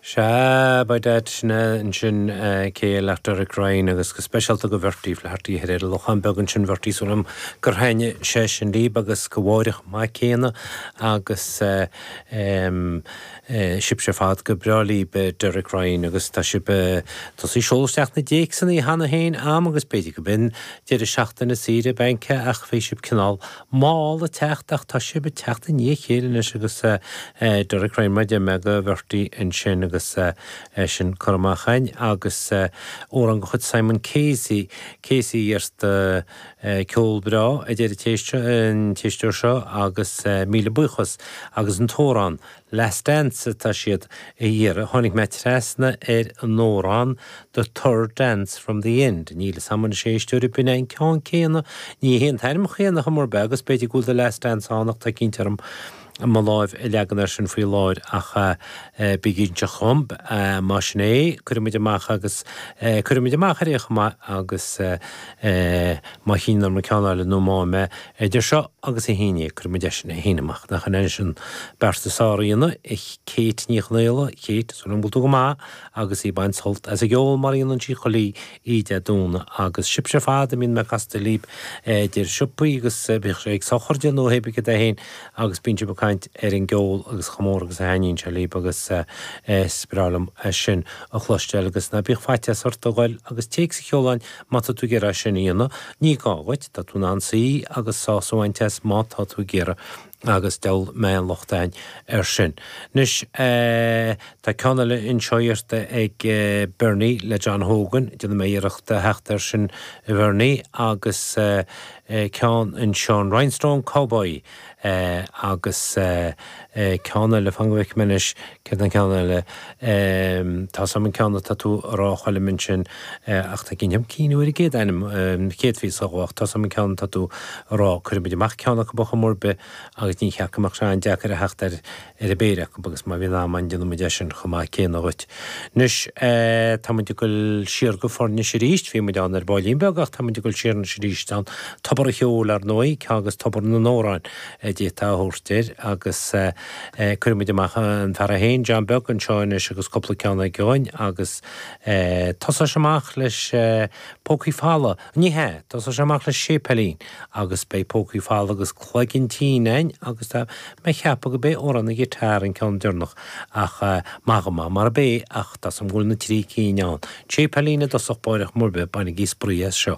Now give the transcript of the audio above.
Sea, ba ait ansin cé le Derek Ryan, agus go speisialta go Bhertie Flaherty thoir ar an Lochán Beag ansin, Bhertie tá súil a'm gur thaitin sé sin libh agus go Mháire chomh maith céanna agus sibhse ar fad gur breá libh Derek Ryan agus tá sibh ag tosú seoladh isteach na dtéacsanna cheana féin a'm agus b'fhéidir gurb é an deireadh seachtaine saoire bainc ach bhí sibh cineál mall ag teacht ach tá sibh ag teacht i ndiaidh a chéile anois agus Derek Ryan mar a deir mé go Bhertie ansin agus é sin curtha amach againn agus amhrán de chuid Simon Casey, Casey iarrtha, ceol breá a deir an t-éisteoir seo agus míle buíochas agus an t-amhrán Last Dance atá siad a iarraidh. Tháinig mé trasna ar an amhrán The Third Dance from the End. Níl 'fhios a'm anois a éisteoir ab in é an ceann céanna. Ní hé an t-ainm céanna ar chuma ar bith agus b'fhéidir go bhfuil The Last Dance ann ach tá cinnte orm mo láimh a leagan air sin faoi láthair ach bí cinnte dhom más in é cuirfidh muid amach agus cuirfidh muid amach ar aon chuma agus má chinneann orm an ceann eile nó má fhaighim é Idir seo agus Dé hAoine, cuirfidh muid eisean Dé hAoine amach. Nach ionann sin beart a sáraíonna, a Kate Ní Chonaola? Kate, tá súil a'm go bhfuil tú go maith agus í ag baint sult as an gceol mar a dhéanann sí i gcónaí dar ndóigh agus sibhse ar fad a mbíonn mé ag casadh libh idir siopaí agus bíodh sé ag sochraidí nó hé bith cén áit é féin agus bíonn sibh ag caint ar an gceol agus chomh mór agus a thaitníonn sé libh agus is breá liom sin a chloisteáil agus ná bíodh faitíos ort a dhul agus téacs a sheoladh a'ainn Má tá tú ag iarraidh é sin a dhéanamh, ní gá dhuit, tá tú in ann suí agus sásamh a bhaint as má tá tú ag iarraidh agus diabhal a mbeidh aon locht a'ainn air sin. Anois eh, tá ceann eile anseo iarrta ag Bernie le John Hogan, déanfaidh mé iarracht a theacht air sin a Bhernie, agus eh, ceann anseo, an Rhinestone Cowboy, eh, agus eh, eh, ceann eile, fan go bhfeicfidh mé anois céard é an ceann eile, em, tá's a'm an ceann atá tú a' rá a Choilm ansin, eh, ach tá ag cinnt orm cuimhniú ar an gcéad ainm, em, chéad phíosa dhó, tá's a'm an ceann atá tú a' rá, cuirfidh muid amach ceann acub ar chuma ar bith agus ní cheapfainn go mbeadh sé an-deacair a theacht air, ar an bpéire acu agus má bhíonn am ann déanfaimid é sin chomh maith céanna dhuit. Anois táimid ag dul siar go Foirnis arís, bhí muid ann ar baillín beag ach táimid ag dul siar anois arís ann, tobar an cheoil ar ndóigh, ceann agus tobar na n-amhrán a d'fhéadfá a thabhairt air agus cuirfidh muid amach an fear é féin, John Beag, anseo anois agus cúpla ceann eile againn agus tosóidh sé amach leis Pócaí Folamh. Ní hea, tosóidh sé amach le Séipéilín agus beidh Pócaí Folamh agus Cloigeann Tinn ann agus tá mé ag ceapadh gob é Amhrán an Guitar an ceann deireanach ach maith go maith marab é ach tá's a'm go bhfuil na trí cinn ann, Séipéilín i dtosach báire ar chuma ar bith bainigí spraoi as seo.